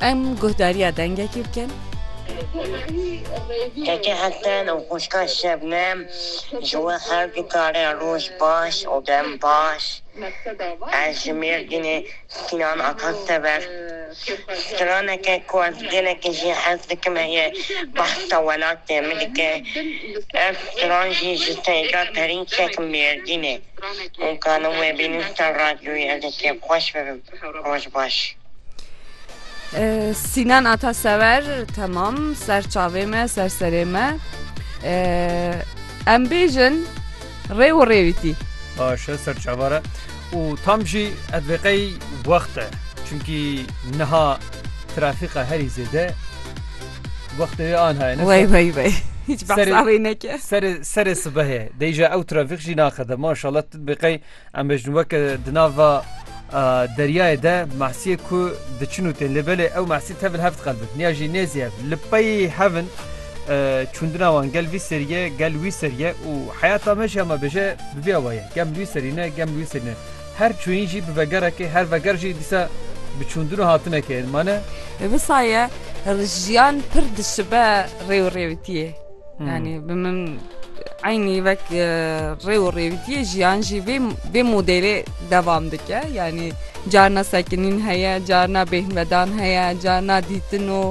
Em guhdariya dengekî bikin. Keke Hesen û xwişka Şebnem ji we her du carê roj baş û dem baş. Ez ji Mêrdînê Sînan Ata Sever. Straneke ku ez gelekî jî hez dikim heye behsa welatê min dike. Ev stran jî ji Seyda Perînçek Mêrdînê. Hûn karin wê bînin ser radyoyê ez ê kêfxweş bibim. Roj baş. Sinan ata sever temam ser çavê me ser serê me em bêjin rê û rêwîtî Başe ser çavare û tam jî ev vêqey wexte çimkî niha trafîqa herî zêde wextê an haye wey wey wey hiç behsavê neke serê serê sibehê deyja ew trafîq jî naxede maşallah tu vêqey Em bêjin weke di nav va deryayê de mahsiyê ku diçin û tên lê belê ew mahsî tevil heft qelbin niya jî nêzî hev li peyî hevin çûndina wan gel vî seriye gel wî seriye û heyata me jî hema bêje bibiya waye gem wî serîne gem wî serîne her çûyîn jî bi vegerekê her veger jî dîsa bi çûndin û hatinekê mane. Visaye jiyan pir dişibe rêw rêwitiyê. Yanî bi min eynî vek rê û rêwîtiyê jiyan jî vê vê modêlê devam dike yanî carna sekinîn heye carna bêhnvedan heye carna dîtin û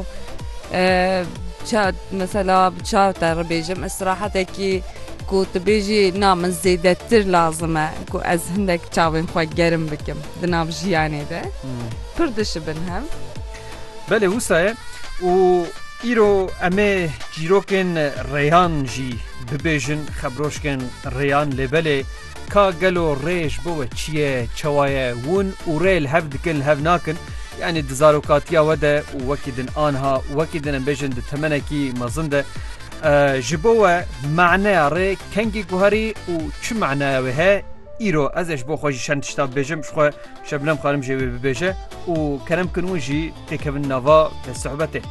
mesela bi çav te ribêjim istirahetekî ku tu bêjî na min zêdetir lazim e ku ez hindek çavên xwe gerim bikim di nav jiyanê de pir dişibin hev Belê wisa ye û îro em ê çîrokên rêyan jî bibêjin, xebroşkên rêyan lê belê ka gelo rê ji bo we çi ye, çawa ye, wûn û rê li hev dikin li hev nakin. Yanî di zarokatiya we de û wekî din anha wekî din em bêjin di temenekî mezin de ji bo we maneya rê kengî guherî û çi maneya wê heye îro ez ê ji bo xwe jî çend tişta bibêjim ji xwe Şebnem Xanim jê wê bibêje û kerem kin wan jî têkevin nava sohbetê.